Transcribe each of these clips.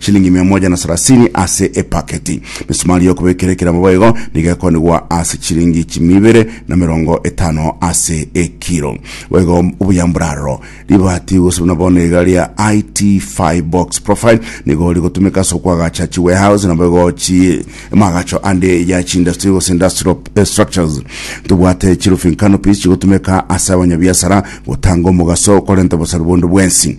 Shilingi mia moja na sarasini ase epaketi. Misumari y'okobekera ekeremo boigo nigo ekonigwa ase chilingi chimi ibere na merongo etano ase ekiro. Boigo obuya mboraroro. Ribati gose buna bono iga ria IT5 Box Profile nigo rigotumeka ase okwagacha chi warehouse naboigo chi amagacho ande ya chi industry gose industrial eh, structures. Tobwate chi roofing canopies chigotumeka ase abanyabiasara gotanga omogaso okorenta obosarwa bonde bwensi.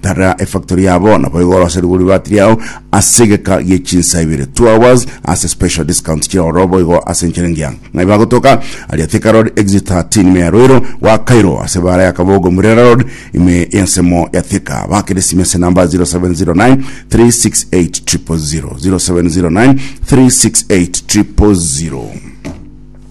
Tara efactory yabo nabo igorose rigori batiri yao ase egeka gie chinsa ibere 2 hours ase special discount chire oro boigo ase encherengi ya ng'ai bagotoka aria Thika Road exit 13 ime ya Roiro gwakairwo ase bara ya Kabogo Murera Road ime y'ensemo ya Thika bakere sime ase namba 0709 368 000 0709 368 000